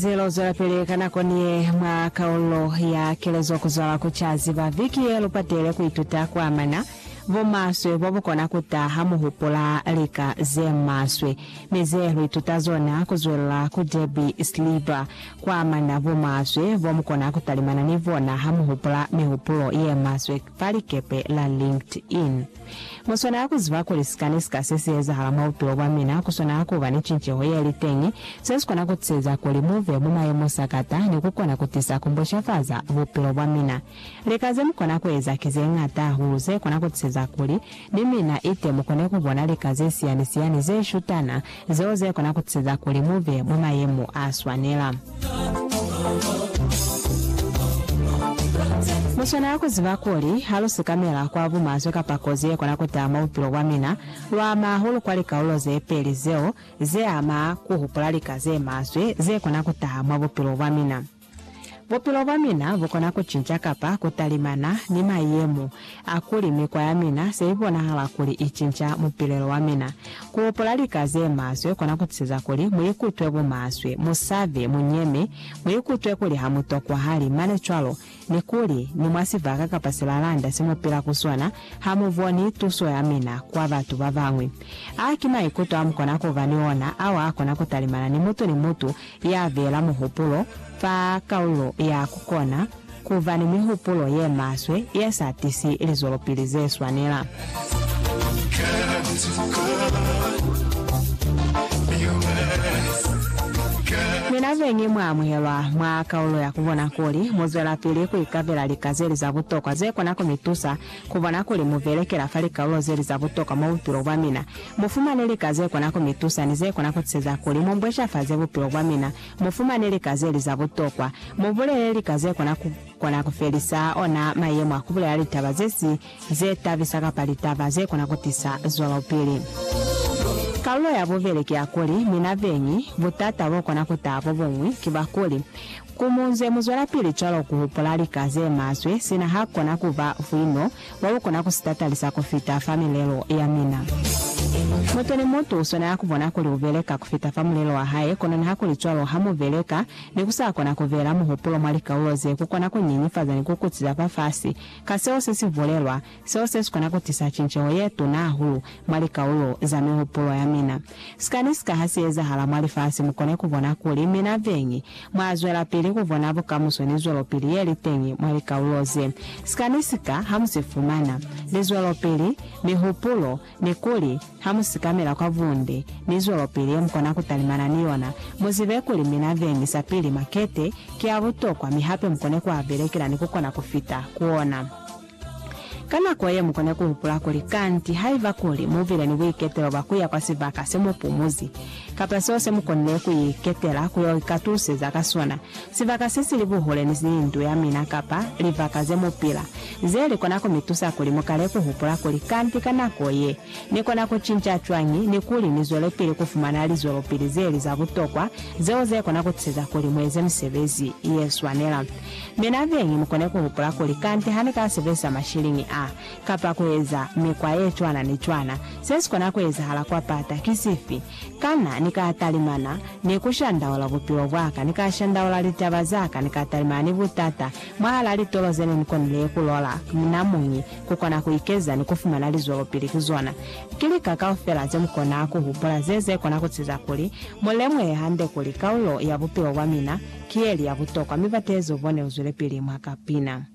Ze lo zwelapili ka nako ni ye mwa kaulo ya kelezo kuzwala ku Ca Ziba viki ye lu patele ku ituta ku amana bumaswe bo bu kona ku ta ha mu hupula lika ze maswe mi ze lu ituta zona ku zwelela ku Debbie Schreiber ku amana bumaswe bo mu kona ku talimana ni bona ha mu hupula mihupulo ye maswe fa likepe la LinkedIn. Mu swanela ku ziba kuli sika ni sika se si ezahala mwa bupilo bwa mina ku swanela ku ba ni cinceho ye li teñi, se si kona ku tiseza kuli mu be mwa mayemo sakata ni ku kona ku tisa ku mbushafaza bupilo bwa mina. Lika ze mu kona ku eza ki ze ñata hahulu ze kona ku tiseza kuli ni mina ite mu kone ku bona lika ze siani-siani ze shutana zeo ze kona ku ziza kuli mu be mwa mayemo a swanela. Mu swanela ku ziba kuli ha lu sikamela kwa bumaswe kapa kozi ye kona ku taha mwa bupilo bwa mina, lu ama hahulu kwa likaulo ze peli zeo ze ama ku hupula lika ze maswe ze kona ku taha mwa bupilo bwa mina. Bupilo bwa mina bukona kucinca kapa kutalimana ni mayemo a kuli mikwa ya mina se ibonahala kuli icinca mupilelo wa mina. Kuhupula lika zemaswe kona kutiseza kuli muikutwe bumaswe, musabe, munyeme, muikutwe kuli hamutokwahali, mane cwalo ni kuli ni mwa sibaka kapa silalanda semupila ku sona hamuboni tuso ya mina kwa batu babañwi. A ki maikuto amukona kuba ni ona ao akona kutalimana ni mutu ni mutu ya beela muhupulo fa kaulo ya ku kona ku ba ni mihupulo ye maswe ye sa tisi lizwelopili ze swanela. Mi na beñi mwa amuhelwa mwa kaulo ya ku bona kuli mu zwelapili ku ikabela lika ze li za butokwa ze kona ku mi tusa Ku bona kuli mu belekela fa likalolo ze li za butokwa mwa bupilo bwa mina, mu fumane lika ze kona ku mi tusa ni ze kona ku tiseza kuli mu mbwecafaze bupilo bwa mina, mu fumane lika ze li za butokwa. Mu bulele lika ze kona ku kona ku felisa ona mayemo a ku bulela litaba ze si ze tabisa kapa litaba ze kona ku tisa zwelopili. Kalulo ya bubeli ki ya kuli, mina beñi, butata bo kona ku taha bo buñwi ki bwa kuli, Ku munze muzwelapili cwalo ku hupula lika ze maswe, sina ha kona ku ba vwino bwa ku kona ku si tatalisa ku fita fa milelo ya mina. Mutu ni mutu u swanela ku bona kuli u beleka ku fita fa mulelo wa hae, kono nihakulicwalo, ha mu beleka ni ku sa kona ku beela muhupulo mwa likaulo ze ku kona ku nyenyefaza ni ku kutiza fafasi ka seo se si bulelwa, Seo se si kona ku tisa cinceho ye tuna hahulu mwa likaulo za mihupulo ya mina. Sika ni sika ha si ezahala mwa lifasi, mu kone ku bona kuli mina beñi mwa zwelapili ku bona bukamuso ni zwelopili ye li teñi mwa likaulo ze. Sika ni sika ha mu si fumana, ni zwelopili, mihupulo, ni kuli ha mu sikamela kwa bunde, ni zwelopili ye mu kona ku talimana ni yona. Mu zibe kuli mina beñi sapili makete ki a butokwa mi hape mu kone ku a belekela ni ku kona ku fita ku ona. Ka nako ye, mu kona ku hupula kuli, Kanti haiba kuli mu bile ni buiketelo bwa ku ya kwa sibaka se mu pumuzi, kapa seo se mu konile ku iketela ku yo ikatuseza ka sona, sibaka se si li buhule ni ndu ya mina kapa libaka ze mu pila, ze li kona ku mi tusa kuli mu kale ku hupula kuli, Kanti ka nako ye, Ni kona ku cinca cwañi ni kuli ni zwelepili ku fumana lizwelopili ze li za butokwa, zeo ze kona ku tiseza kuli mu eze misebezi ye swanela? Mina beñi mu kone ku hupula kuli, Kante ha ni ka sebezisa mashiliñi a, kapa ku eza mikwa ye cwana ni cwana, se si kona ku ezahala kwa pata ki sifi? Kana ni ka talimana ni ku shandaula bupilo bwa ka, ni ka shandaula litaba za ka, ni ka talimana ni butata mwahal'a litolo ze ne ni konile ku lola? Mina muñi ku kona ku ikeza ni ku fumana lizwelopili ku zona. Ki lika kaufela ze mu kona ku hupula ze ze kona ku ziza kuli mu lemuhe hande kuli kaulo ya bupilo bwa mina ki ye li ya butokwa mi bateezi u bone u zwile pili mwa kapina.